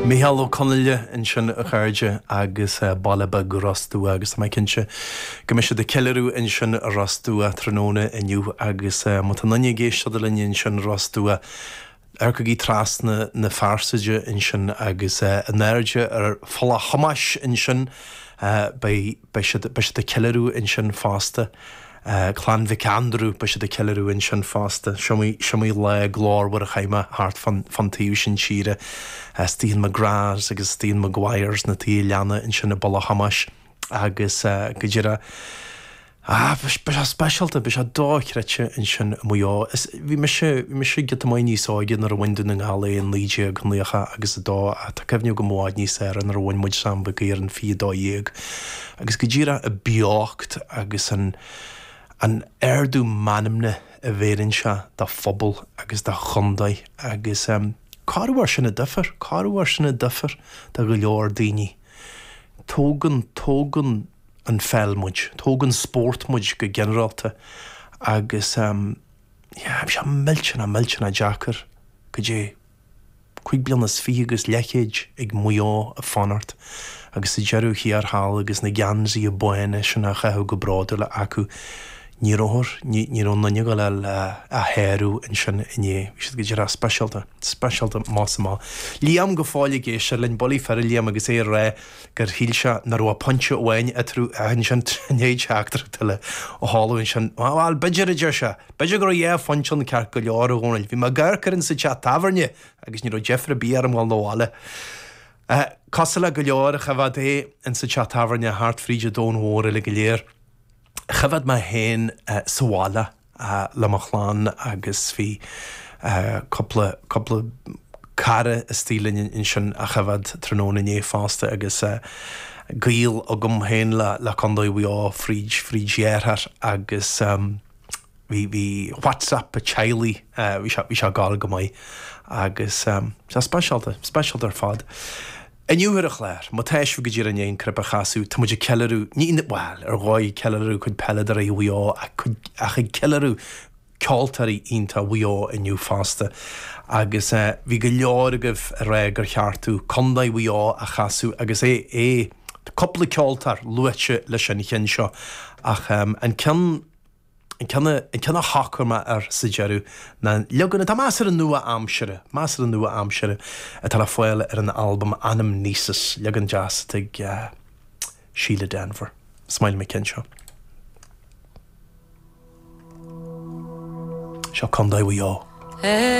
Micheál Ó Conghaile ansin a chairde agus baile beag Ros Dumhach agus tá mé cinnte go mbeidh siad ag ceiliúradh ansin i Ros Dumhach tráthnóna inniu agus má tá aon duine ag éisteacht linn ansin i Ros Dumhach amharcaigí trasna na fearsaide ansin agus in airde ar Pholl a' Tómais ansin beidh beidh siad, beidh siad ag ceiliúradh ansin fosta. Clann Mhic Aindriú, beidh siad ag ceiliúradh ansin fosta. Is iomaí, is iomaí lá glórmhar a chaith mé thart fán, fán taobh sin tíre. Istigh in McGraths agus istigh in Maguires na tithe leanna ansin i bPoll a' Tómais agus go díreach, ah, beidh sé, beidh sé speisialta, beidh sé dochreidte ansin i Maigh Eo. Is. Bhí mise, bhí mise giota maith níos óige nuair a bhain Dún na nGall é i naoi déag naocha agus a dó ach tá cuimhne agam i bhfad níos fearr nuair a bhain muid Sam Mhic Uidhir in fiche a dó dhéag agus go díreach an beocht agus an, an ardú meanmna a bheireann sé dá phobal agus dá chontae agus eh cá raibh ár sin a duifear, cá raibh ár sin a duifear do go leor daoine. Tógann, tógann an pheil muid, tógann spórt muid go ginearálta agus yeah bhí sé millteanach, millteanach deacair, cad é, cúig bliana is fiche agus leathchéad ag Maigh Eo ag fanacht agus sa deireadh thiar thall agus na geansaithe bána sin á chaitheamh go bródúil acu, Ní raibh, ní raibh aon duine ag gabháil á sárú ansin inné. Bhí siad go díreach speisialta, speisialta más ea. Liam go fóill ag éisteacht linn, bullaí fir Liam agus é ag rá gur shíl sé nach raibh pointe amháin eatarthu ach ansin tríd achan rud eile a tharla ansin, bhuel, b'fhéidir, a deir sé, b'fhéidir go raibh dhá phointe ann ceart go leor, a Dhónaill. Bhí mé ag coimhéad an chluiche sa teach tábhairne agus ní raibh deifir ar bith orm dhul na bhaile. Cosúil le go leor, choimhéad é ins an teach tábhairne thart fríd an domhan mhór uilig go léir. choimhead mé féin sa bhaile le mo chlann agus bhí cúpla, cúpla cara istoigh linn ansin a choimhead tráthnóna inné fosta agus gaol agam féin le, le Condae Mhaigh Eo fríd, fríd dheartháir agus bhí, bhí whatsapp teaghlaigh, bhí sé, bhí sé ag gabháil go maith agus bhí sé speisialta, speisialta ar fad. Inniu ar an chlár, má tá sibh go díreach i ndiaidh an cnaipe a chasadh, tá muid ag ceiliúradh, ní, bhuel, ar dhóigh ag ceiliúradh cuid peileadóirí Mhaigh Eo ach cuid, ach ag ceiliúradh ceoltóirí iontacha Mhaigh Eo inniu fosta agus eh bhí go leor agaibh ag rá gur cheart domh Contae Mhaigh Eo a chasadh agus é, é, tá cúpla ceoltóir luaite leis an cheann seo ach ehm an ceann An ceann a shocraigh mé air sa deireadh ná leagan atá measartha nua-aimseartha, measartha nua-aimseartha, atá le fáil ar an albam Anamnesis, leagan deas atá ag Síle Denvir. Is maith liom an ceann seo. Seo Contae Mhaigh Eo.